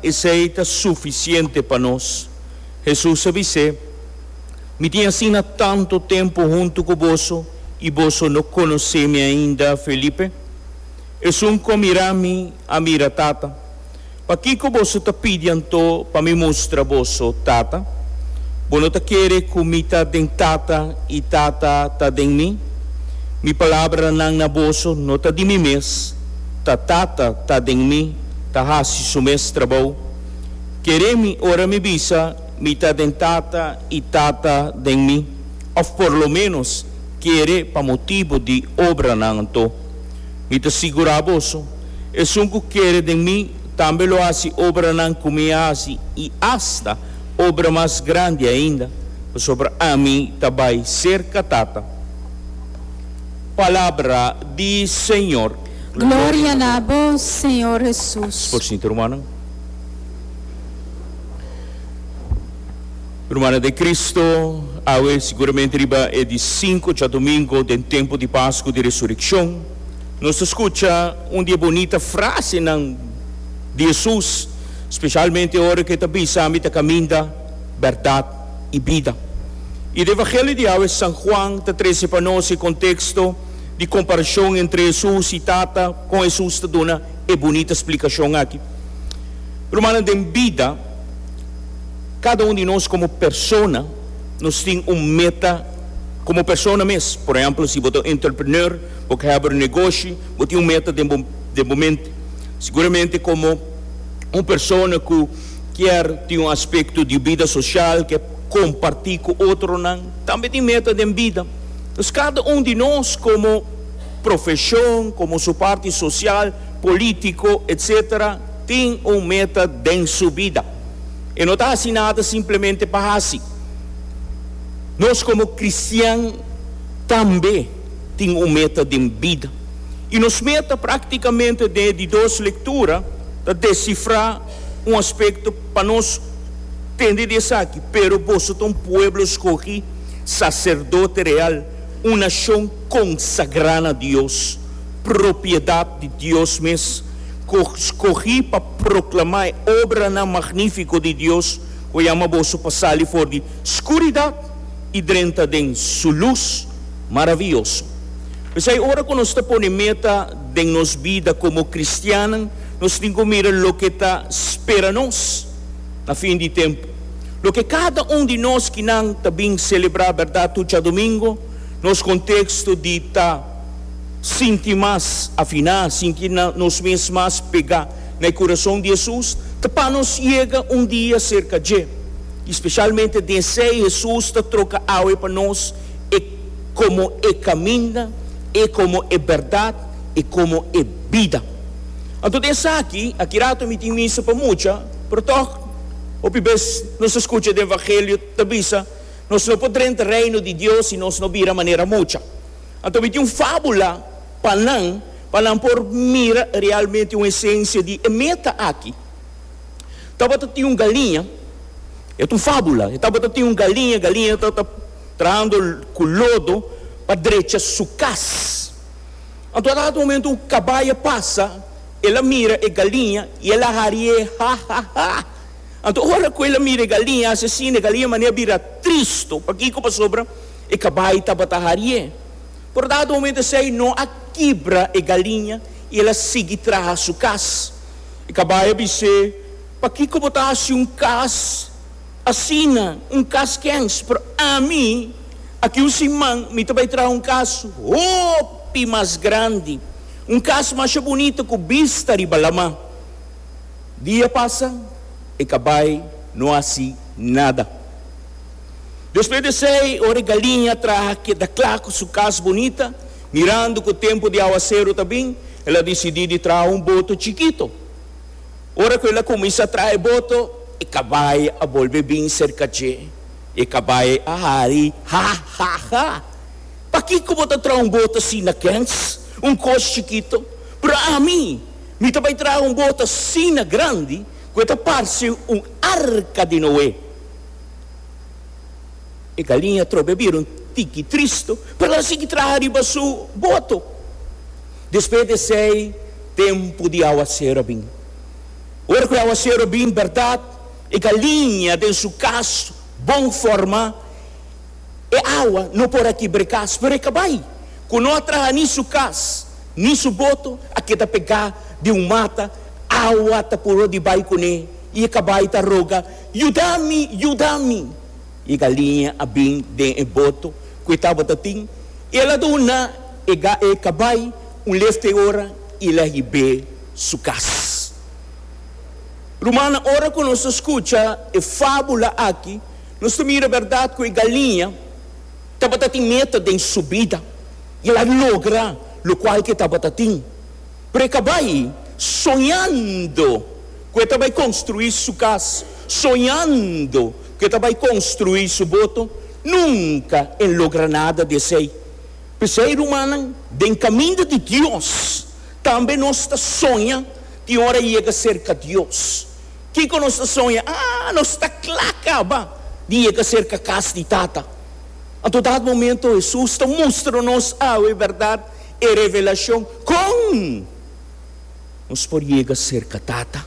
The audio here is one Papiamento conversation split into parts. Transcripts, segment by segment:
Esei ta sufisiente pa nos. Hesus a bis'é, Mi tin asina tantu tempu huntu ku boso i boso no konosé mi ainda, Felipe? Esun ku a mira mi, a mira Tata. Pakiko boso ta pidi anto pa mi mustra boso Tata? Bo no ta kere ku mi ta den Tata i Tata ta den mi? Mi palabranan na boso no ta di mi mes, ta Tata ta den mi. ta hasi su mes trabou. Kere mi ora mi bisa mi ta den tata i tata den mi, of por lo menos kere pa motibu di obranan anto. Mi ta sigura boso, esun ku kere den mi tambe lo hasi obranan ku mi a hasi i asta obra mas grandi ainda, pasobra ami ta bai serka tata. Palabra di Señor. Gloria na bo, Señor Jesus. Por sinta rumannan. Rumannan den Cristo, awe siguramente riba e di sinku oca domingo den tempu di Pascu di Resureccion, nos ta scucha un di e bonita frasenan di Jesus, specialmente ora cu e ta bisa, Ami ta caminda, berdad y bida. Y den Evangelio di awe San Juan ta trece pa nos e contexto, di komparashon entre Hesus i Tata, kon Hesus ta duna e bunita splikashon aki? Rumannan, den bida, kada un di nos komo persona, nos tin un meta komo persona mes. Por ehèmpel, si bo ta un entrepreneur, bo ke hèber un negoshi, bo tin un meta den bo den bo mente. Seguramente komo un persona ku kier tin un aspekto di bida soshal, ke kompartí ku otronan, tambe tin meta den bida. Pues cada un di nos como profesion, como su parti social, politico, etc. Tin un meta den su bida. E no ta haci nada simplemente pa haci. Nos como cristian tambe tin un meta den bida. Y nos meta practicamente den e di dos lectura ta descifra un aspecto pa nos tende di esaki, pero boso ta un pueblo scogi. Saserdote real, un nashon konsagrá na Dios, propiedat di Dios mes, ku skogí pa proklamá e obranan magnífiko di Dios, ku a yama boso pa sali for di skuridat i drenta den Su lus maravioso. P'esei, ora ku nos ta pone meta den nos bida komo kristiannan, nos tin ku mira loke ta spera nos na fin di tempu. Loke kada un di nos kinan ta bin selebrá bèrdat tuchadomingo, nos konteksto di ta sinti mas afiná, sinti nos mes mas pegá na e kurason di Hesus, ta pa nos yega un dia serka dje. I spesialmente den esei Hesus ta troka awe pa nos e komo e kaminda, e komo e bèrdat, e komo e bida. Anto den esaki, aki rato mi tin misa pa mucha, pero tòg, Hopi bes nos ta scucha di evangelio ta bisa, Nos no por drenta reino di Dios si nos no bira manera mucha. Anto mi tin un fabula pa nan, pa nan por mira realmente un esencia di e meta aki. Tabata tin un galiña, e ta un fabula, e tabata tin un galiña, galiña ta ta trahando cu lodo pa drecha su cas. Anto a dado momento un cabaya pasa, El a mira e galiña y el a hari'é, Ha, ha, ha! Anto ora cu el a mira e galiña, e asesino, e galiña mane a bira tristo. Pakico? Pasobra e cabai tabata hari'é. Pero dado momento esei no a kibra e galiña y el a sigui traha su cas. E cabai a bis'é, Pakico bo ta haci un cas asina? Un cas kens? Pero ami, aki un siman, mi ta bay traha un cas hopi mas grandi. Un kas masha bunita ku bista riba lama. Dia pasa, e kabai no hasi nada. Despues di esei, ora e galiña traha keda kla ku su kas bunita, mirando ku tempu di awaseru ta bin, el a disidí di traha un boto chikito. Ora ku el a kuminsá traha e boto, e kabai a bolbe bin serka dje. E kabai a hari, Ha-ha-ha! Pakiko bo ta traha un bot asina, Kens? Un kos chikito? Pero ami, mi ta bai traha un bot asina grandi ku e ta parse un arka di Noe. E galiña atrobe a bira un tiki tristu, pero el a sigui traha riba su boto. Despues di esei, tempu di awaseru a bin. Ora ku e awaseru a bin bèrdat, e galiña den su kas bon forma. E awa no por a kibra kas, pero e kabai ku no a traha ni su kas ni su boto a keda pegá di un mata. Awa ta puro di bai kuné i e kabai ta roga, Yuda mi! Yuda mi! I e galiña a bin den e boto ku e tabata tin. El a duna e e kabai un lefte ora i el a hib'é su kas. Rumannan, ora ku nos ta skucha e fábula akí, Nos ta mira berdad cu e galiña tabata tin meta den su bida y el a logra locual cu e tabata tin. Pero e cabai soñando cu e ta bay construi su cas, soñando cu e ta bay construi su boto, nunca el logra nada di esey. P'esey, rumannan, den caminda di Dios tambe nos ta soña tin ora yega cerca Dios. Kiko nos ta soña? A, nos ta kla kaba di yega serka kas di Tata. Anto dat momento Hesus ta mustra nos awe bèrdat e revelashon kon nos por yega serka Tata.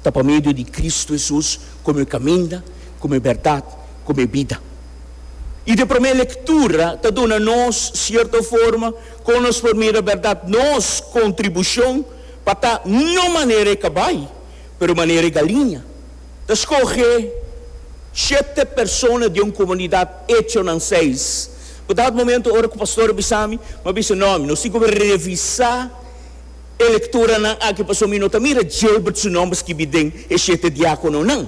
Ta pa medio di Kristu Hesus komo e kaminda, komo e bèrdat, komo e bida. I de promé lektura ta duna nos sierto forma kon nos por mira bèrdat, nos kontribushon pa ta no manera e ka bai. pero manera e galiña ta skohe shete persona den un komunidat, Hecho nan seis. Ku dat momento ora ku pastor a bisa mi, mi a bisa, No, mi no si gobe revisá e lekturanan aki pasobra mi no ta mira Gilbert su nòmber skibi den e shete diákononan.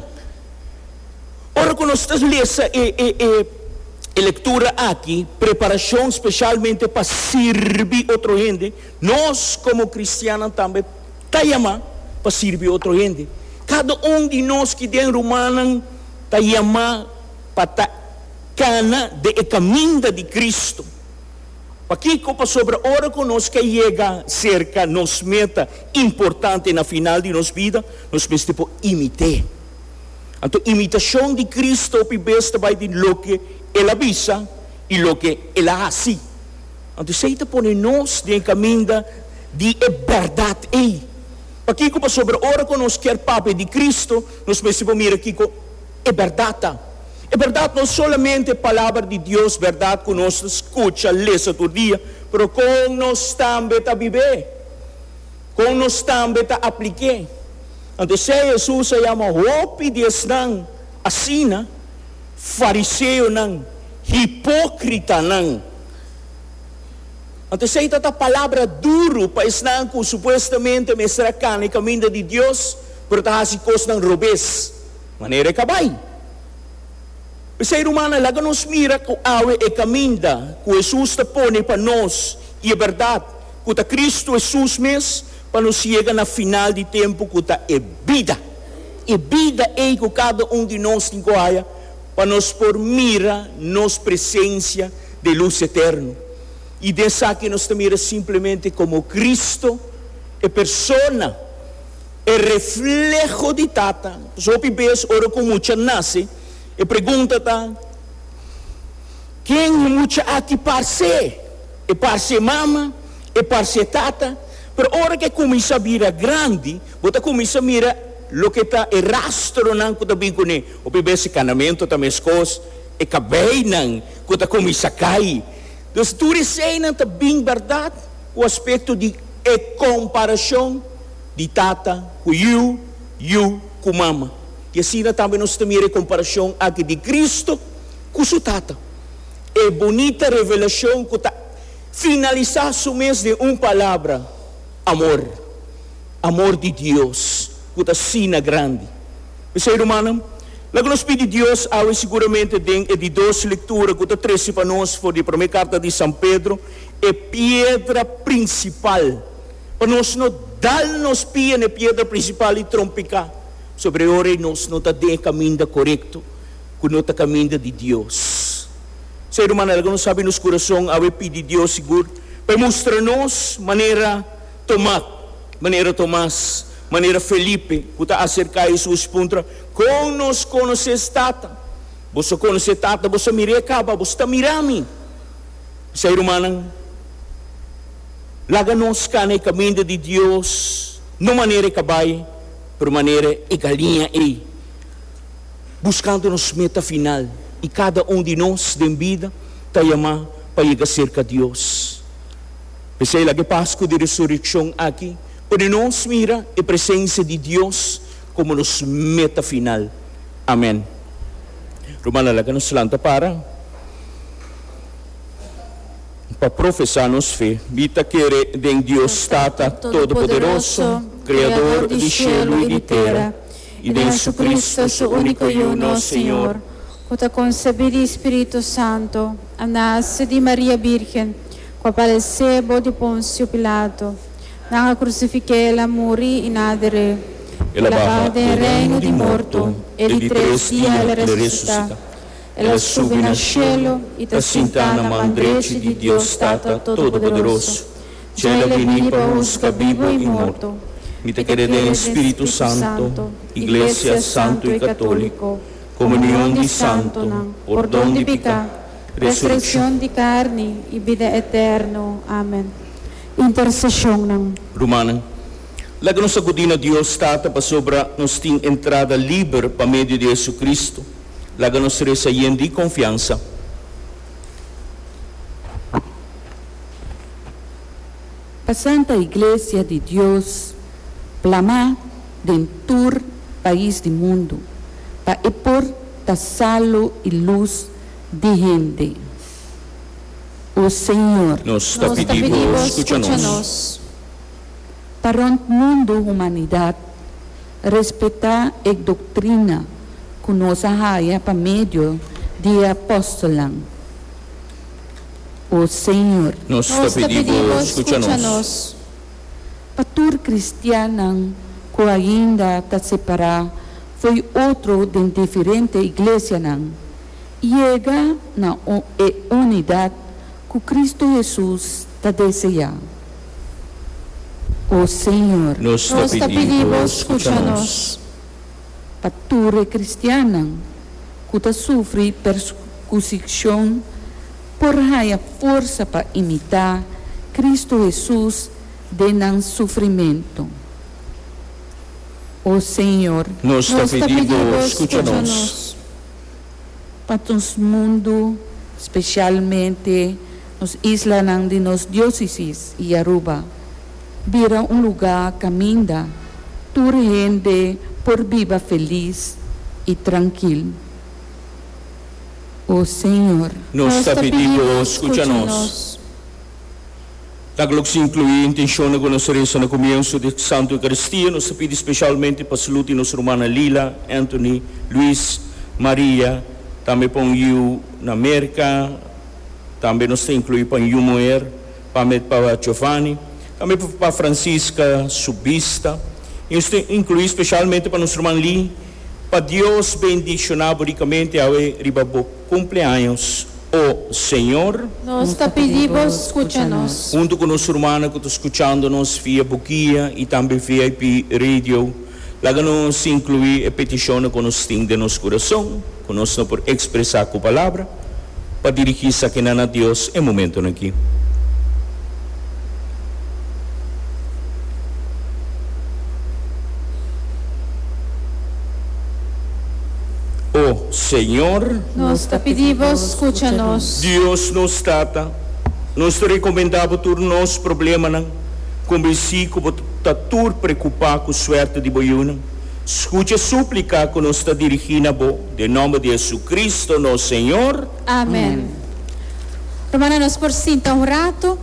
Ora ku nos ta lesa e e lektura aki, Preparashon speshalmente pa sirbi otro hende, nos komo kristiannan tambe ta yamá pa sirbi otro hende. Kada un di nos ki den rumannan ta yamá pa ta kana den e kaminda di Cristo. Pakiko? Pasobra ora ku nos ke yega serka nos meta importante na final di nos bida, nos mester por imit'é. Anto imitashon di Cristo hopi bes ta bai di loke El a bisa i loke El a hasi. Anto esei ta pone nos den e kaminda di e bèrdat ei. Pakiko? Pasobra ora ku nos kier papia di Kristu, nos mester por mira kiko e bèrdat ta. E bèrdat no solamente e Palabra di Dios, bèrdat ku nos ta skucha, lesa tur dia, pero kon nos tambe ta bib'é, kon nos tambe ta aplik'é. Anto esei Hesus a yama hopi di esnan asina, fariseonan, hipókritanan. Anto esei ta ta palabra duru pa esnan ku supuestamente mester a kana e kaminda di Dios, pero ta hasi kosnan robes. Manera e ka bai. P'esei, rumannan, laga nos mira ku awe e kaminda ku Hesus ta pone pa nos i e bèrdat, ku ta Kristu Hesus mes, pa nos yega na final di tempu ku ta e bida. E bida ei ku kada un di nos tin ku haya. pa nos por mira nos presencia de luz eterno, y di esaki nos ta mira simplemente como Cristo, e persona, e refleho di Tata. Entonces hopi bes ora cu un mucha nace, e pregunta ta, Ken e mucha aki parce? E parce e mama? E parce e tata? Pero ora cu e cuminsa bira grandi, bo ta cuminsa mira loke ta e rastronan cu ta bin cu ne. Hopi bes e kanamentu ta meskos, e kabeinan ku ta kuminsá kai. Dus tur eseinan ta bin bèrdat ku aspekto di e komparashon di tata ku yu, yu ku mama. I asina tambe nos ta mira e komparashon aki di Kristu ku su Tata. E bunita revelashon ku ta finalisá su mes den un palabra, amor. Amor di Dios ku ta asina grandi. P'esei, rumannan, laga nos pidi Dios awe siguramente den e di dos lektura ku ta trese pa nos for di e promé karta di San Pedro, e piedra prinsipal, pa nos no dal nos pia n'e piedra prinsipal i trompiká, pasobra e ora ei nos no ta den e kaminda korekto, ku no ta kaminda di Dios. P'esei, rumannan, laga nos abi nos kurason awe pidi Dios sigur pa e mustra nos manera. Tomat, manera Tomas, manera Felipe, ku ta aserká Hesus, puntra, Kon nos konosé Tata? Bos a konosé Tata, bos a mir'é kaba, bos ta mirá mi. P'esei, rumannan, laga nos kana e kaminda di Dios, no manera e kabai, pero manera e galinha ei, buskando nos meta final, i kada un di nos den bida ta yamá pa yega serka Dios. P'esei laga e Pasku di Resurekshon aki pone nos mira e presensia di Dios komo nos meta final. Amèn. Rumannan, laga nos lanta para pa profesá nos fe. Mi ta kere den Dios Tata Todopoderoso, Kreador di shelu i di tera, i den JesuCristu, Su úniko Yu, nos Señor, ku ta konsebí di Spiritu Santu, a nase di Maria Bírgen, Pa parese bo di Ponsio Pilato. Nan a krusifiké el, a muri i nan a deré. El a baha den reino di morto, e di tres dia el a resusitá. El a subi na shelu i ta sintá na man drechi di Dios Tata Todopoderoso. Dja el a bini pa huska bibu i morto. Mi ta kere den e spiritu santu, iglesia santu i katóliko, komunion di santunan, pordon di piká, Resureccion di carni y bida eterno. Amen. Intercesionnan. Rumannan, laga nos sacudi na Dios Tata pasobra nos tin entrada liber pa medio di Jesucristo. Laga nos reza yen di confiansa. Pa Santa Iglesia di Dios plama den tur pais di mundu, pa e por ta salu y luz di hende, O Señor. Nos ta pidi Bo scucha nos. Pa rond mundu humanidad respeta e doctrina cu nos a haya pa medio di e apostolnan, O Señor. Nos ta pidi Bo scucha nos. Pa tur kristiannan ku ainda ta separá fo'i otro den diferente iglesianan, yega na e unidat ku Kristu Hesus ta deseá. O Señor. Nos ta pidi Bo skucha nos. Pa tur e kristiannan ku ta sufri persikishon. por haya forsa pa imitá Kristu Hesus den nan sufrimentu. O Señor. Nos ta pidi Bo skucha nos. Pa nos mundu, spesialmente nos islanan di nos diósisis i Aruba, bira un lugá kaminda tur hende por biba felis i trankil. o Señor. Nos ta pidi Bo scucha nos. Laga lo cu ta inclui intencionnan cu nos a reza na cumienso di e Santo Eucaristia. Nos ta pidi specialmente pa salud di nos rumannan Lila, Anthony, Luis, Maria, tambe pa un yiu na Merca, tambe nos ta inclui pa un yiu muher, Pa mi, pa Giovanni, tambe pa Francisca su bista, i nos tin inclui specialmente pa nos ruman Lee, Pa Dios bendiciona bo ricamente awe riba bo cumpleaños, o Señor. Nos ta pidi bo scucha nos. Hunto cu nos rumannan cu ta scuchando nos via bo guia i tambe VIP Radio, laga nos inclui e peticionnan cu nos tin den nos curason. ku nos no por ekspresá ku palabra pa dirigí sakinan na Dios e momentonan aki. O Señor. Nos ta pidi Bo skucha nos. Dios nos Tata, nos ta rekomendá Bo tur nos problemanan, konbensí ku Bo ta tur preokupá ku suerte di Bo yunan. Scucha e súplica cu nos ta dirigi na bo, den nomber di Jesucristo, nos Señor. Amen. Rumannan, nos por sinta un rato.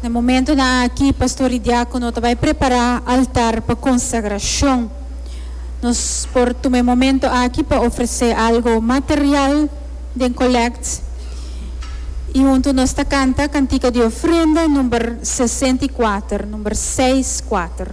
Na e momentonan aki, pastor i diákono ta bai prepará altar pa konsagrashon. Nos por tuma e momento aki pa ofresé algo material den kolèkt. I huntu nos ta kanta kantika di ofrenda number sesenta i kuater, number seis kuater.